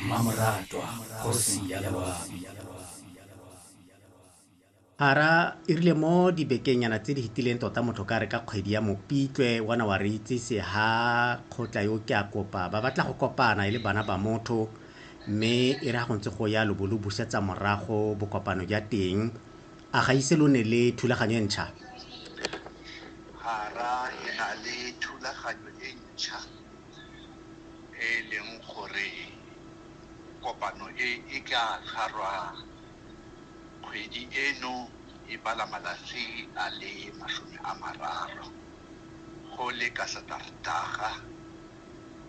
Mmamoratwa kgosi ya Lewabi. A ra e rile mo dibekenyana tse di fetileng tota motho ka re ka kgwedi ya Mopitlwe wana wa re itsise ha kgotla yo ke a kopa ba batla go kopana e le bana ba motho mme e re ha go ntse go ya lo bo lo busetsa morago bokopano ja teng a ga ise lo ne le thulaganyo e ntšha a ra re na le thulaganyo e ntšha. e e leng gore kopano e e tla tshwarwa kgwedi eno e bala malatsi a le masome a mararo go le ka Sateretaga,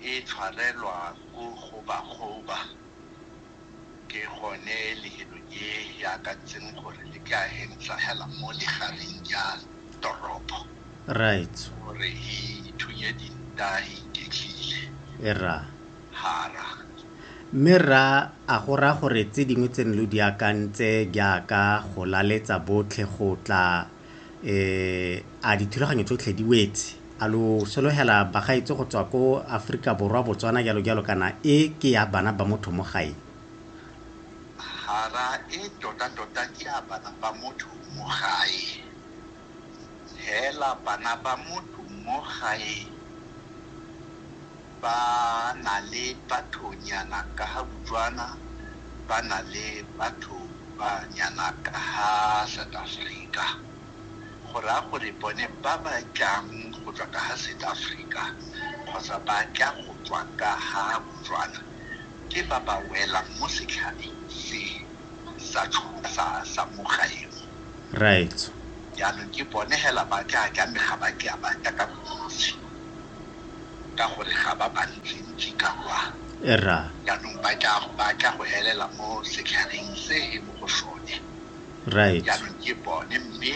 e tshwarelwa ko go Bakgoba. Ke gone lehelo e e akantseng gore le ke a hentla hela mo legareng ja toropo. Right. Gore e ithunye dinta e iketlile. E ra. Ha ra. Mme rra, a go raya gore tse dingwe tse ne lo di akantse jaaka go laletsa botlhe go tla Eh, a dithulaganyo tsotlhe di wetse? A lo sologela bagaetse go tswa ko Aforika Borwa, Botswana, jalo jalo, kana e ke ya bana ba motho mo gae? Hara, e tota tota ke ya bana ba motho mo gae. Hela bana ba motho mo gae. ba na le bathonyana ka ha Botswana, ba na le batho ba nyana ka ha South Africa. Go raya gore bone ba ba tlang go tswa ka ha South Africa kgotsa ba tla go tswa ka ha Botswana ke ba ba welang mo setlhareng se sa sa sa mo gaeno. Right. Jaanong ke bone hela ba tla tlameha ba tla ba tla ka bontsi. ka gore ga ba bantsintsi ka kwa. Rra. Jaanong ba tla, ba tla go elela mo setlhareng se e mo go sone. Right. Jaanong ke bone, mme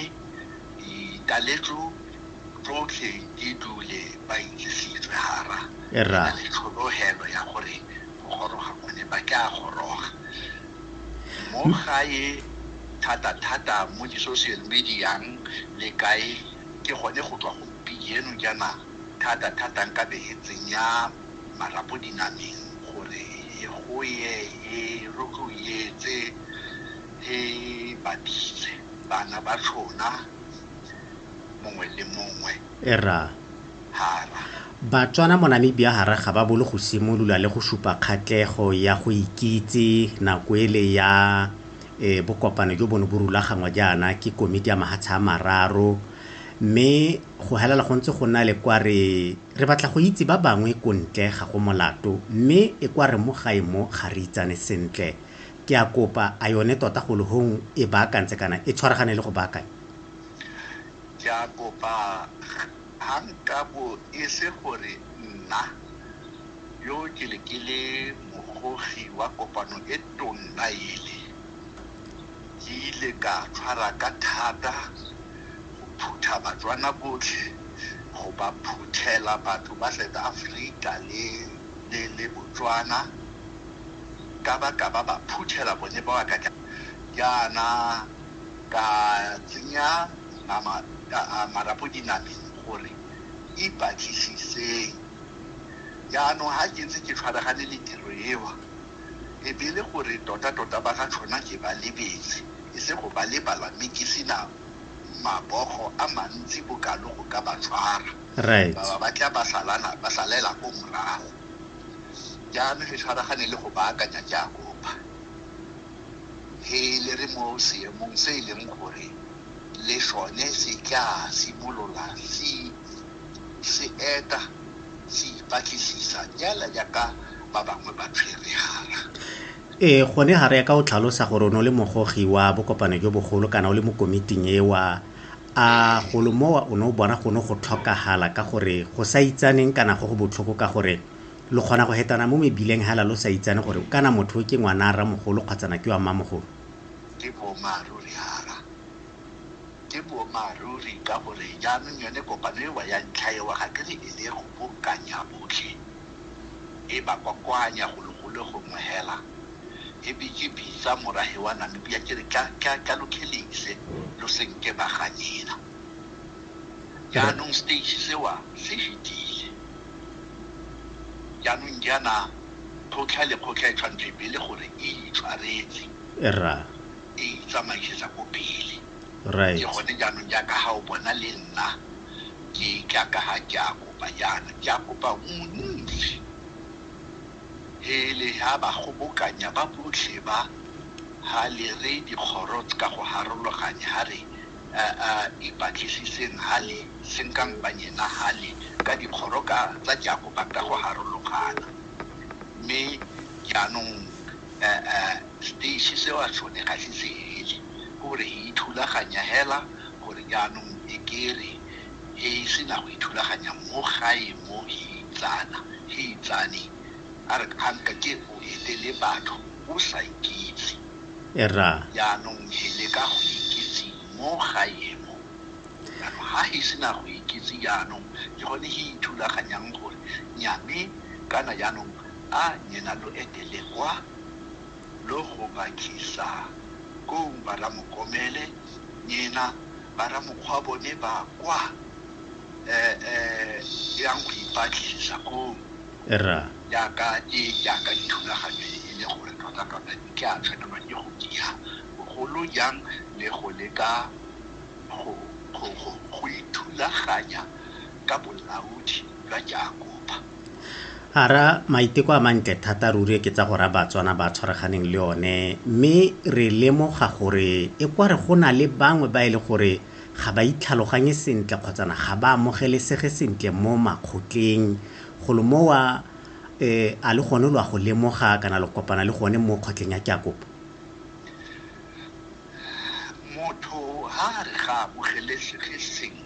ditaletso tsotlhe di dule ba itsisitswe hara. Rra. Ke na le tlhologelo ya gore go goroga mone ba tla goroga. Mo gae thata-thata mo di-social media-ng le kae, ke gone go tswa go. Pigi eno jaana thata-thata nka be e tsenya marapo dinameng gore e goye e rotloietse e ba bitse bana ba tshona mongwe le mongwe. Erra. Hara. Batswana mo Namibia hara ga ba bolo go simolola le go supa kgatlego ya go ikitse nako ele ya e bokopano jo bo ne bo rulaganngwa jaana ke Komiti ya Mahatsha a Mararo, Mme go helela go ntse go na le kwa re re batla go itse ba bangwe ko ntle ga go molato mme e kwa re mo gae mo ga re itsane sentle. Ke a kopa a yone tota go le hong e baakantse kana e tshwaragane le go baakanya? Ke a kopa ha nka bo e se gore nna yo ke le ke le mogogi wa kopano e tonna ele. Ke ile ka tshwara ka thata go phutha Batswana botlhe, go ba phuthela batho ba South Africa le Botswana, ka ba ka ba ba phuthela bone ba wa ka tla jaana ka tsenya marapo dinameng gore ipatlisiseng. Jaanong ga ke ntse ke tshwaragane le tiro eo. e be e le gore totatota ba ga Tlhona ke ba lebetse, e se go ba lebala mme ke se na mabogo a mantsi bokalo go ka ba tshwara. Ba ba ba tla ba salana ba salela ko morago. Jaanong he tshwaragane le go baakanya Jakoba he le re mo seemong se e leng gore le sone se tla simolola se se eta se ipatlisisa nyana jaaka ba bangwe ba tshweregala. Ee, gone ga re ya ka o tlhalosa gore o ne o le mogogi wa bokopano jo bogolo kana o le mo komiting ewa, a golo mowa o ne o bona gone go tlhokagala ka gore go sa itsaneng kana go go botlhoko ka gore lo kgona go hetana mo mebileng hela lo sa itsane gore kana motho o ke ngwana a rramogolo kgwatsana ke wa mmamogolo? Ke boammaaruri hara. Ke boammaaruri ka gore jaanong yone kopano ewa ya ntlha ewa ga ke re e ne e kgobokanya botlhe, e ba kwakwanya golo golo gongwe hela. E be ke bitsa morage wa Namibia ke re ka lo khelise lo se nke ba ganyena. Jaanong stage sewa se fetile. Jaanong jaana kgotlha le kgotlha e tshwantsho e be e le gore e itshwaretse. Rra. e itsamaisetsa ko pele. Right. Ke gone jaanong jaaka ga o bona le nna ke tla ka ga ke a kopa jaana ke a kopa montsi hele ha ba gobokanya ba botlhe ba ha le re dikgoro ka go harologanye ha re ipatlisiseng ha le senkang banyena ha le ka dikgoro ka tsa ke a kopa ka go harologana mme jaanong Seteiši se wa sone ga se seele, ke gore e ithulaganya hela gore jaanong e kere he e se na go ithulaganya mo gae mo he itsana, he itsane, a re a nka ke o elele batho o sa ikitse. Erra. Jaanong he leka go ikitse mo gae mo. Jaanong ha he se na go ikitse jaanong ke gone he ithulaganyang gore nyame kana jaanong a nyena lo etele kwa. logobakhisa kong ba ramokomele nyena ba ramokgwa bone ba kwa eh eh yang go ipatlisisa kong ra yaka e yaka dithulaganyo e e le gore tota tota di tla tshwanelwa ke go diha bogolo jang le go leka go go go go ithulaganya ka bolaodi jwa Jakoba. A ra, Maiteko a mantle thata ruri ke tsa go ra Batswana ba tshwaraganeng le one, mme re lemoga gore e kwa re go na le bangwe ba e le gore ga ba itlhaloganye sentle kgotsana ga ba amogelesege sentle mo makgotleng. Golo mowa, eh, a le gone lo a go lemoga kana lo kopana le gone mo kgotleng ya Jakoba? Motho ha a re ga amogelesege sentle,